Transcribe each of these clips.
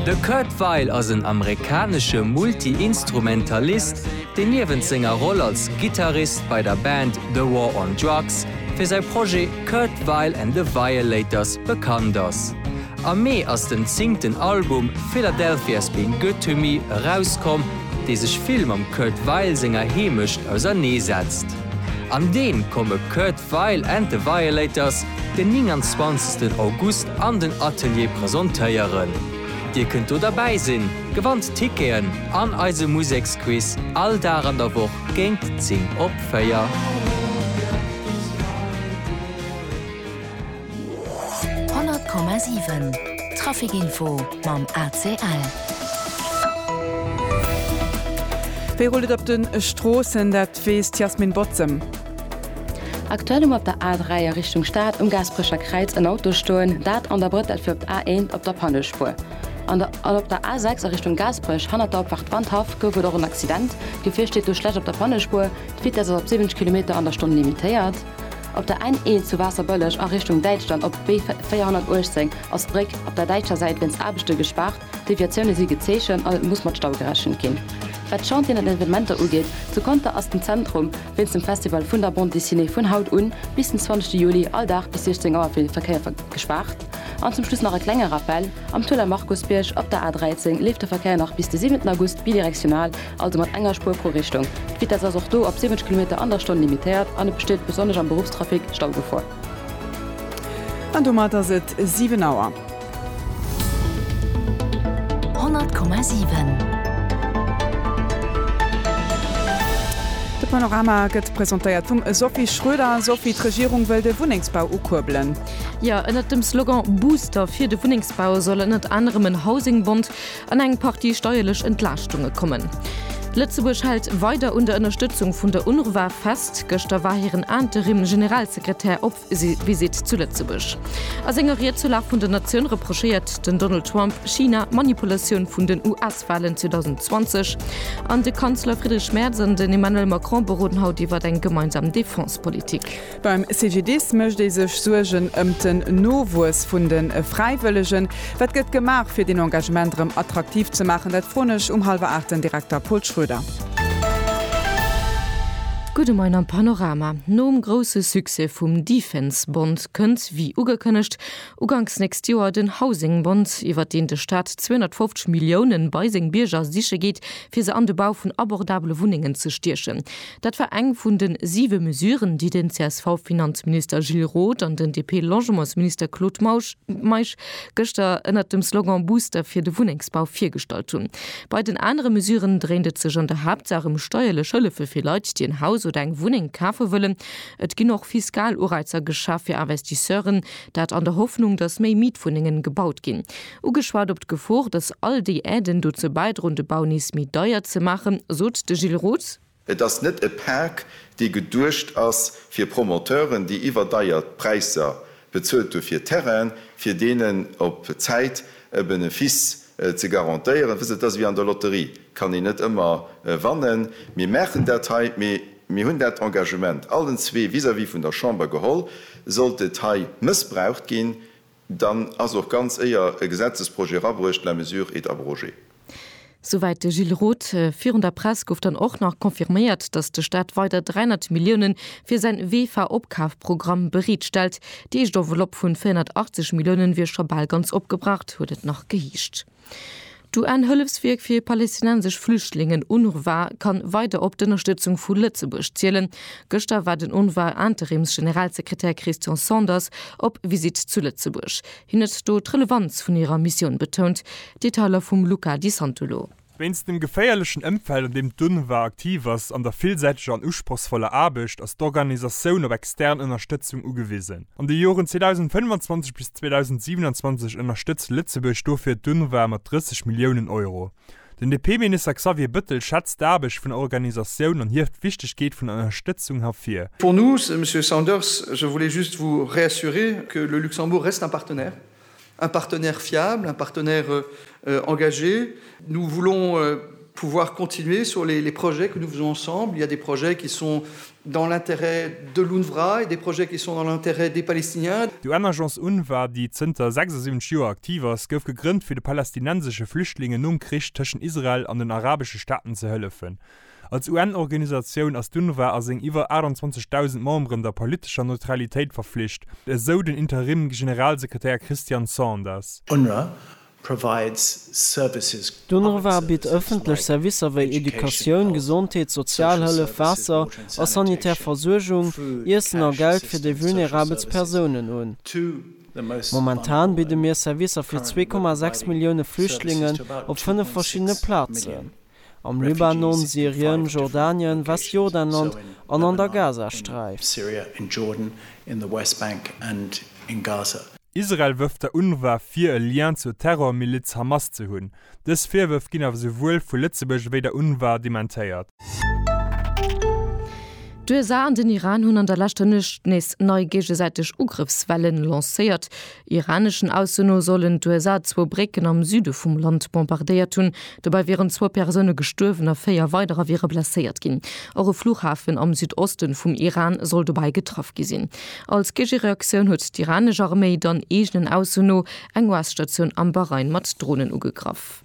De Kurt Weill ass en amerikanesche Multi-Instrumentalist, deen niewent senger Roll als Gittarist bei der Band The War on Drugs fir säi Projet Kurt Weill and the Violators bekannt ass. Am Mee ass den zéngten Album Philadelphia's Been Good to Me erauskomm, dee sech vill mam Kurt Weill senger Heemecht ausernee setzt. An deem komme Kurt Weill and the Violators den 29 August an den Atelier presontéieren. Dir kënnt do derbäi sinn, gewannt Ticketen an eise Museksquiz all Dag an der Woch géint 10 op 4. D'Weess, d'Yasmin Botzem. Aktuell um op der A3 a Richtung Stad um Gaasperecher Kräiz en Auto stoen, dat an der Bretelle fir op d'A1 op der Pannespuer. An der an op der A6 a Richtung Gaasperech hannert der Opfahrt Wandhaff gouf et och en Accident. D'Gefier steet do schlecht op der Pannespuer, d'Vitess ass op 70 Kilometer an der Stonn limitéiert. Op der N1 zu Waasserbëlleg a Richtung Däitschland op d'B 418 ass d'Bréck op der däitscher Säit wéinst Aarbechte gespaart. D'Deviatioune si gezeechent an et muss mat Stau gerechent ginn. Wat d'Chantieren an Evenementer ugeet, zu Conter ass den Zentrum wéinst dem Festival vun der Bande Dessinée vun haut un bis den 20 Juli all Dag bis 16 Auer fir de Verkéier gespaart. An zum Schluss nach e klenge Rappel, Am Tueller Markusbierg op der A 13 leeft de Verkéier nach bis de 7 August bidirektional, also mat enger Spuer pro Richtung. D'Vitess ass och do op 70 Kilometer an der Stonn limitéiert an et besteet besonnesch am Beruffstrafic Staugefor. An domat ass et 7 Auer. 100,7. De Panorama gëtt presentéiert vum Sophie Schröder. Sophie, d'Regierung wëll de Wunnengsbau ukuerbelen. Jo, ënnert dem Slogan Booster fir de Wunnengsbau soll ënnert anerem en Housing-Bond an eng Partie steierlech Entlaaschtunge kommen. Lëtzebuerg hält weider un der Ënnerstëtzung vun der UNRWA fest. Gëschter war hiren Interim-Generalsekretär op. Visitt zu Lëtzebuerg. A senger Ried zur Lag vun der Natioun reprochéiert den Donald Trump China d'Manipulatioun vun den US-Walen 2020 an de Kanzler Friedrich Merz an den Emmanuel Macron beroden haut iwwert eng gemeinsam Defense-Politik. Beim CGDIS mécht ee sech Suergen ëm den Nowuess vun de Fräiwëllegen. Wat gëtt gemaach, fir deen Engagement erëm attraktiv ze maachen? Dat froen ech um hallwer aacht den Direkter Pol Schroeder. Gudde Moien am Panorama. Nom grousse Succès vum Defense Bond kënnt, wéi ugekënnegt, uganks nächst Joer den Housing Bond, iwwert deen de Staat 250 Milliounen bei seng Bierger siche geet, fir se an de Bau vun abordabele Wunnengen ze stiechen. Dat war eng vun de siwe Mesuren, déi den CSV-Finanzminister Gilles Roth an den DP-Logementsminister Claude Meisch gëschter ënnert dem Slogan Booster fir de Wunnengsbau virgestallt hunn. Bei den anere Mesuren dréint et sech an der Haaptsaach ëm steierlech Hëllefe fir Leit, déi en Haus oder eng Wunneng kafe wëllen. Et ginn och fiskal Ureizer geschaff fir Investisseuren, dat an der Hoffnung, datt méi Mietwunnengen gebaut ginn. Ugeschwat op d'Gefor, datt all déi Aiden dozou bäidroen, de Bau nees méi deier ze maachen, sot de Gilles Roth. Et ass net e Park, dee geduecht ass fir Promoteuren, déi iwwerdeier Präisser bezuelt hu fir Terrainen, fir deenen op Zäit e Benefice ze garantéieren. Wësst Dir, et ass ewéi an der Lotterie, kann een net ëmmer wannen. Mir maachen dat hei, mee mir hunn dat Engagement allen zwee vis-à-vis vun der Chamber geholl. Sollt et hei mëssbraucht ginn, Dann ass och ganz éier e Gesetzesprojet erabruecht, la mesure est abrogée. Souwäit de Gilles Roth. Virun der Press gouf dann och nach confirméiert, datt de Staat weider 300 Millioune fir säin WEFA-Opkafprogramm bereet stellt. Déi éischt Enveloppe vun 480 Millioune wier scho bal ganz opgebraucht, huet et nach geheescht. D'UN-Hëllefswierk fir palästinensesch Flüchtlingen, UNRWA, kann weider op d'Ënnerstëtzung vu Lëtzebuerg zielen. Gëschter war den UNRWA-Interims-Generalsekretär Christian Sanders op Visitt zu Lëtzebuerg. Hien huet do d'Relevanz vun hirer Missioun betount. Detailer vum Luca Di Santolo. Wéinst dem geféierlechen Ëmfeld, an deem d'UNRWA aktiv ass, an der villsäiteger an usprochsvoller Aarbecht, ass d'Organisatioun op extern Ënnerstëtzung ugewisen. An de Joren 2025 bis 2027 ënnerstëtzt Lëtzebuerg dofir d'UNRWA mat 30 Milliounen Euro. Den DP-Minister Xavier Bëttel schätzt d'Aarbecht vun der Organisatioun an hieft d'Wichtegkeet vun der Ënnerstëtzung hervir. Pour nous, Monsieur Sanders, je voulais juste vous réassurer que le Luxembourg reste un partenaire. Un partenaire fiable, un partenaire engagé. Nous voulons pouvoir continuer sur les projets que nous faisons ensemble. Il y a des projets qui sont dans l'intérêt de l'UNRWA et des projets qui sont dans l'intérêt des Palestiniens. D'UN-Agence UNRWA, déi zënter 76 Joer aktiv ass, gouf gegrënnt, fir de palästinensesche Flüchtlingen nom Krich tëschent Israel an den arabesche Staaten ze hëllefen. Als UN-Organisatioun ass d'UNRWA a seng iwwer 28.000 Memberen der politescher Neutralitéit verflicht, esou den Interim-Generalsekretär Christian Sanders. UNRWA provides services. D'UNRWA bitt ëffentlech Servicer wéi Educatioun, Gesondheet, Sozialhëllef, Waasser a sanitär Versuergung, Iessen a Geld fir déi vulnerabelst Persounen un. Momentan bidde mir Servicer fir 2,6 Millioune Flüchtlingen op fënnef verschiddene Plazen. am Libanon, Syrien, Jordanien, Westjordanland an an der Gazasträif. Israel wërft der UNRWA vir e Lien zur Terrormiliz Hamas ze hunn. Dës Virwërf ginn awer souwuel vu Lëtzebuerg ewéi der UNRWA dementéiert. D'USA an den Iran hunn an der leschter Nuecht nees nei géigesäiteg Ugrëffswellen lancéiert. Iraneschen Aussen no sollen d'USA zwou Brécken am Süde vum Land bombardéiert hunn. Dobäi wieren zwou Persoune gestuerwen a véier weiderer wiere blesséiert ginn. Och e Fluchhafen am Südoste vum Iran soll dobäi getraff gi sinn. Als Géigereaktioun huet d'iranesch Arméi dann eegenen Ausso no eng US-Statioun am Bahrain mat Dronen ugegraff.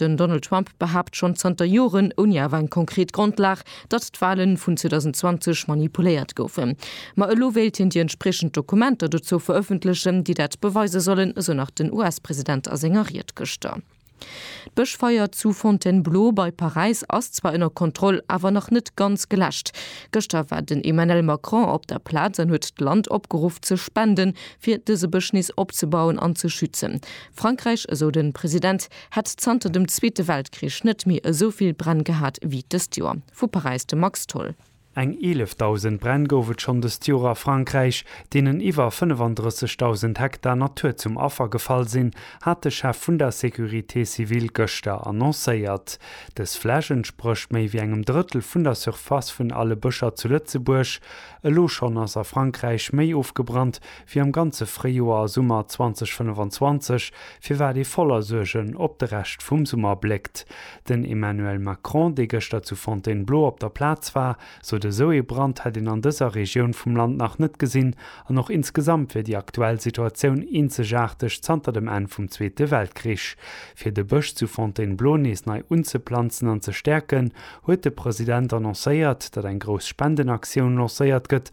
Den Donald Trump behaapt schonn zanter Joren, ouni awer eng konkret Grondlag, datt d'Walen vun 2020 manipuléiert goufen. Ma elo wéilt hien déi entspriechend Dokumenter dozou verëffentlechen, déi dat beweise sollen, esou nach den US-President a senger Ried gëschter. D'Bëschfeier zu Fontainebleau bei Paräis ass zwar ënner Kontroll, awer nach net ganz geläscht. Gëschter war den Emmanuel Macron op der Plaz an huet d'Land opgeruff ze spenden, fir dëse Bësch nees opzebauen an ze schützen. Frankräich, esou de President, Hätt zanter dem Zweete Weltkrich net méi esou vill Bränn gehat ewéi dëst Joer. Vu Paräis de Max Tholl. Eng 11.000 Bränn gouf et schonn dëst Joer a Frankräich, deenen iwwer 35.000 Hektar Natur zum Affer gefall sinn, hat de Chef vun der Sécurité civile gëschter annoncéiert. Dës Fläch entsprécht méi wéi engem Drëttel vun der Surface vun alle Bëscher zu Lëtzebuerg. Elo schonn ass a Frankräich méi ofgebrannt wéi am ganze Fréijoer a Summer 2025, firwat ee voller Suergen op de Rescht vum Summer bléckt. Den Emmanuel Macron, dee gëschter zu Fontainebleau op der Plaz war, sot, esou ee Brand hätt een an dëser Regioun vum Land nach net gesinn an och insgesamt wier déi aktuell Situatioun eenzegaarteg zanter dem Enn vum Zweete Weltkrich. Fir de Bësch zu Fontainebleau nees nei unzeplanzen an ze stäerken, huet de President annoncéiert, datt eng grouss Spendenaktioun lancéiert gëtt,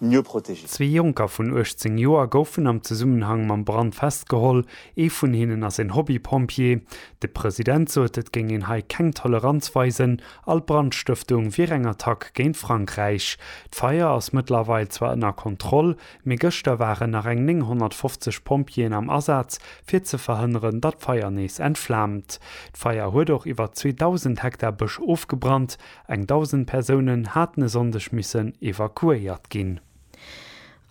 mieux protégés. Zwee Jonker vun 18 Joer goufen am Zesummenhang mam Brand festgeholl. Ee vun hinnen ass een Hobby-Pompjee. De President sot, et géing een hei keng Toleranz weisen. All Brandstëftung wier eng Attack géint Frankräich. D'Feier ass mëttlerweil zwar ënner Kontroll, mee gëschter waren nach eng 950 Pompjeeën am Asaz, fir ze verhënneren, datt d'Feier nees entflaamt. D'Feier huet och iwwer 2.000 Hektar Bësch ofgebrannt, Eng 1.000 Persounen haten e Sonndeg missen evakuéiert ginn.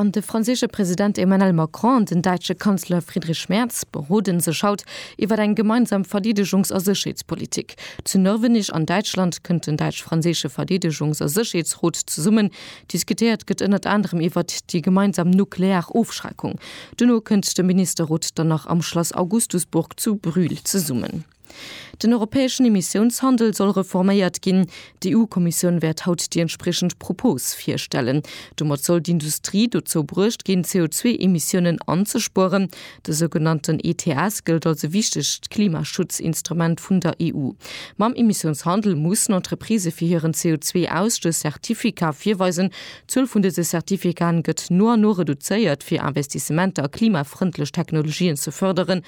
An de franséische President Emmanuel Macron an den däitsche Kanzler Friedrich Merz berode sech haut iwwer eng gemeinsam Verdeedegungs a Sécherheetspolitik. Zu Nörvenich an Däitschland kënnt den däitsch-franséische Verdeedegungs a Sécherheetsrot zesummen. Diskutéiert gëtt ënnert anerem iwwer déi gemeinsam nuklear Ofschreckung. Duerno kënnt de Ministerrot dann nach am Schlass Augustusburg zu Brühl zesummen. Den europäeschen Emissiounshandel soll reforméiert ginn. D'EU-Kommissioun wäert haut déi entspriechend Propos virstellen. Domat soll d'Industrie dozou bruecht ginn, CO2-Emissiounen anzespueren. De sougenannten ETS gëllt als e wichtegt Klimaschutzinstrument vun der EU. Mam Emissiounshandel mussen Entreprisë fir hiren CO2-Ausstöss Zertificaten virweisen. D'Zuel vun dëse Zertificaten gëtt no an no reduzéiert, fir Investissementer a klimafrëndlech Technologien ze fërderen.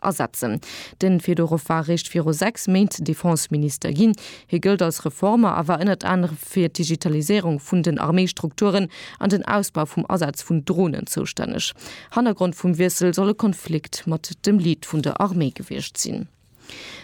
Asetzen. De Fedorow war eréischt viru 6 Méint Defenseminister ginn. Hie gëllt als Reformer a war ënnert anerem fir d'Digitaliséierung vun den Arméistrukturen an den Ausbau vum Asaz vun Dronen zoustänneg. Hannergrond vum Wiessel soll e Konflikt mat dem Lead vun der Arméi gewiescht sinn.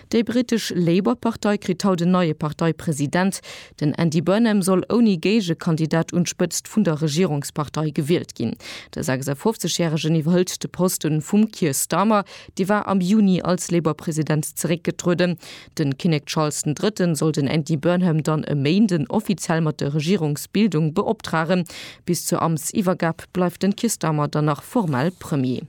Déi britesch Labour-Partei kritt haut en neie Parteipresident. Den Andy Burnham soll ouni Géigekandidat un d'Spëtzt vun der Regierungspartei gewielt ginn. De 56 Järegen iwwerhëlt de Poste vum Keir Starmer, dee war am Juni als Labour-President zeréckgetrueden. Den Kinnek Charles den Drëtten soll den Andy Burnham dann e Méinden offiziell mat der Regierungsbildung beoptragen. Bis zur Amtsiwwergab bleift den Keir Starmer dann nach formell Premier.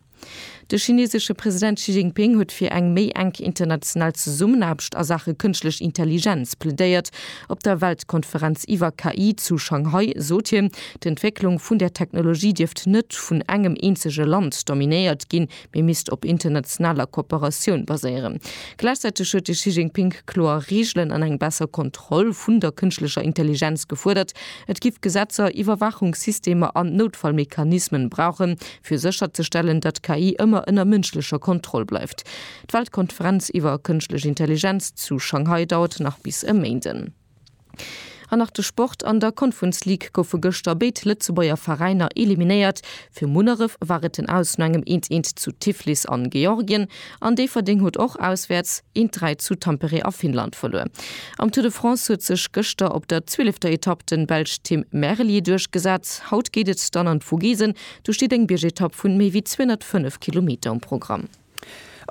De chinesesche President Xi Jinping huet fir eng méi enk international Zesummenaarbecht a Saache Kënschtlech Intelligenz plädéiert. Op der Weltkonferenz iwwer KI zu Shanghai sot hien, d'Entwécklung vun där Technologie dierft net vun engem eenzege Land dominéiert ginn, mee misst op internationaler Kooperatioun baséieren. Gläichzäiteg huet de Xi Jinping kloer Reegelen an eng besser Kontroll vun der kënschtlecher Intelligenz gefuerdert. Et giff Gesetzer, Iwwerwaachungssystemer an Noutfallmechanismen brauchen, fir sécherzestellen, datt KI ëmmer ënner mënschlecher Kontroll bleift. D'Weltkonferenz iwwer kënschtlech Intelligenz zu Shanghai dauert nach bis e Méinden. An nach de Sport, An der Conference League goufe gëschter béid Lëtzebuerger Veräiner eliminéiert. Fir Munneref war et den Aus no engem 'Eent-Eent' zu Tiflis an Georgien an Déifferdeng huet och auswäerts 1-3 zu Tampere a Finnland verluer. Am Tour de France huet sech gëschter op der zwielefter Etapp den Belsch Tim Merlier duerchgesat. Haut geet et dann an d'Vogesen. Do steet eng Biergetapp vun méi wéi 205 Kilometer um Programm.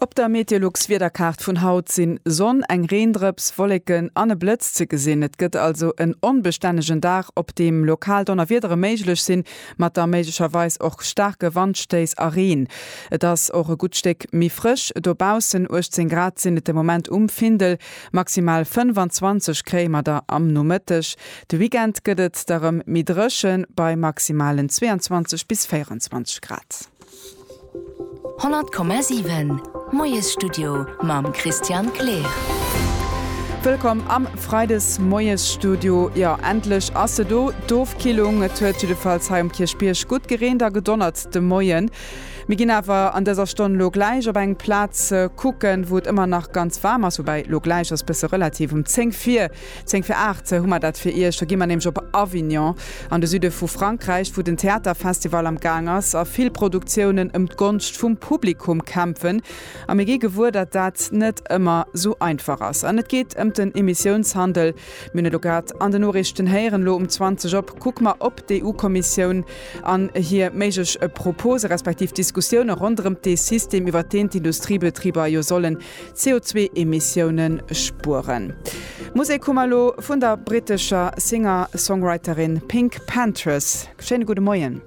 Op der Meteolux-Wiederkaart vun haut sinn Sonn, eng Reendrëps, Wolleken an e Blëtz ze gesinn. Et gëtt also en onbestännegen Dag, op deem lokal Donnerwiedere méiglech sinn, mat da méiglecherweis och staarke Wandstéiss a Reen. Et ass och e gutt Stéck méi frësch dobaussen, 18 Grad sinn et de Moment um Findel, maximal 25 kréie mer da am Nomëtteg. De Weekend gëtt et da rem méi drëchen, bei maximalen 22 bis 24 Grad. 100,7 Moiesstudio mam Christian Kleer. Wëllkomm am Freides Moiesstudio. Jo, endlech ass se do, d'Ofkillung. Et huet jiddefalls hei um Kierchbierg gutt gereent a gedonnert de Moien. Mir ginn awer an dëser Stonn lo gläich op eng Plaz kucken, wou et ëmmer nach ganz waarm ass, woubäi lo gläich ass bësse relativ, um 10 vir Zéng fir aacht hu mer dat fir Iech. Do gi mer nämlech op Avignon, an de Süde vu Frankräich, wou den Theaterfestival am Gaang ass a vill Produktiounen ëm d'Gonscht vum Publikum kämpfen. A mir gi gewuer, datt dat net ëmmer esou einfach ass. An et geet ëm den Emissiounshandel. Mir hunn elo grad an den Noriichten héieren, elo um 20 op kucke mer op d'EU-Kommissioun an hir méiglech Propose respektiv Diskussioune ronderëm dee System, iwwert deen d'Industriebetriber jo sollen CO2-Emissiounen spueren. Musek hu mer elo vun der brittescher Singer-Songwriterin Pink Panthers. Schéine gudde Moien.